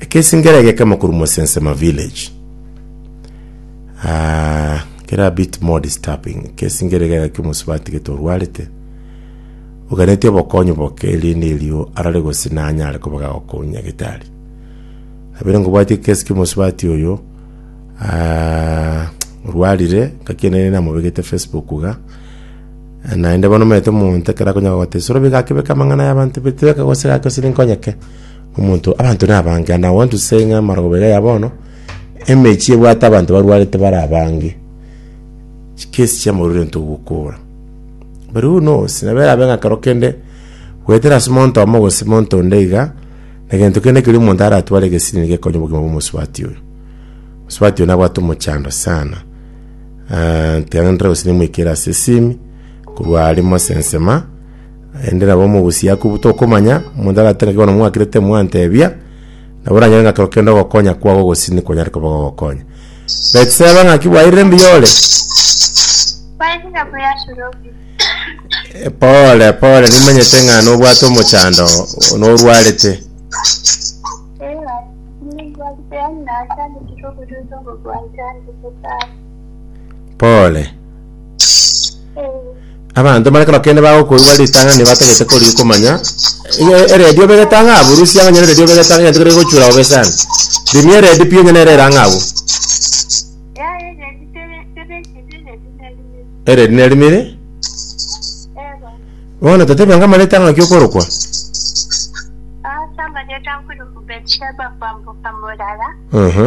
Ekesingera eke kemo korwa Mwesensema village uh, kere a bit more disturbing. Ekesingera eke gaki omosubati gete orwarete oganeti obokonyi boke erinde erio arare gose nanyare koba gagokonya nyagetari abere ngobwati ekesi kia omosubati oyo uh, orwarire ngaki ene namobegete facebook ga naende bono omanyete omonto ekero akonyaka gote sorobi gakebeka amang'ana y'abanto betebeka gose gake gose ninkonyeke Omonto, abanto nabange, and I want to say ng'a amarogoba iga ya bono, emechi ebwate abanto barwarete bare abange, chikesi chiamorero into ogokora. But who knows, nabo erabe ng'a ekero kende, goetera ase omonto omo gose omonto onde iga, na egento kende keria omonto aratware egesini nigo ekonye obogima bwa omosubati oyo. Omosubati oyo nabwate omochando sana, ah, tiga ngenderere gose nimoikere ase esimi, korwa aria mosensema. Naende nabo mogusie a kobuta okomanya, omonto agateba ng'a bono mwakirete mwantebia, nabo oranyore ng'a ekero kende ogokonya kwao gogosini konyare koba gogokonya. Betseba, ng'aki bwairire mbuya ore? Eh, Pole pole, nimanyete ng'a nobwate omochando, norwarete. Pole. Abanto bare ekero kende bagokoigwa ritang'ani nibatagete kori- komanya, iga eredio obegete ang'e abwo, rusia onye eredio obegete ang'e egento kere gegochura bobe sana. Rimia eredio pi onye nere ere ang'e abwo. Yaya enyeti tebe tebeketi enyeti nerimiri. Eredio nerimiri? Ego. Bono totebia ng'a amareta ang'e naki okorokwa? Ase amareta nkorokwa Betsheba kwamboka morara. Ehe.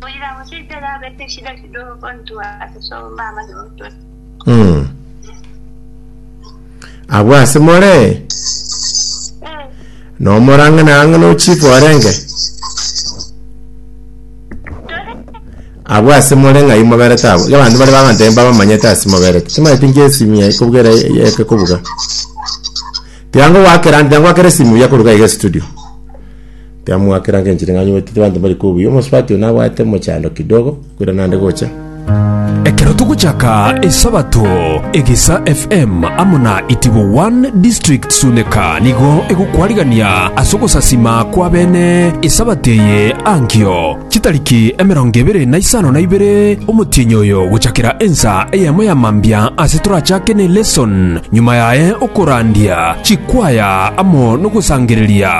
Koira gose itera abete eshida kidogo kontwa ase somba amanye gotwe. Mm. Abwo ase more Eh, nomorang'anarang'ana o chifu orenge tore abwo ase more ng'ai moberete abo iga abanto bare bagantebe mbabamanyete ase moberete timanyeti nki esimu yaye kobugera eke kobuga tiango gwakera ande tiango gwakera esimu yakoruga iga estudio Tiamoakera nka enchera ing'anyi gwetetera abanto mbare kwo obuya. Omosubati oyo nabwate omochando kidogo korende naende gocha. Ekero togochaka esabato egesa FM amo na itibo one district suneka nigo egokwarigania ase ogosasima kwa bene esabato eye ankio chitariki emerongo ebere na isano na ibere omotienyi oyo gochakera ensa eyemo ya mambia ase torachake ne lesson nyuma yaye okorandia chikwaya amo nogosangereria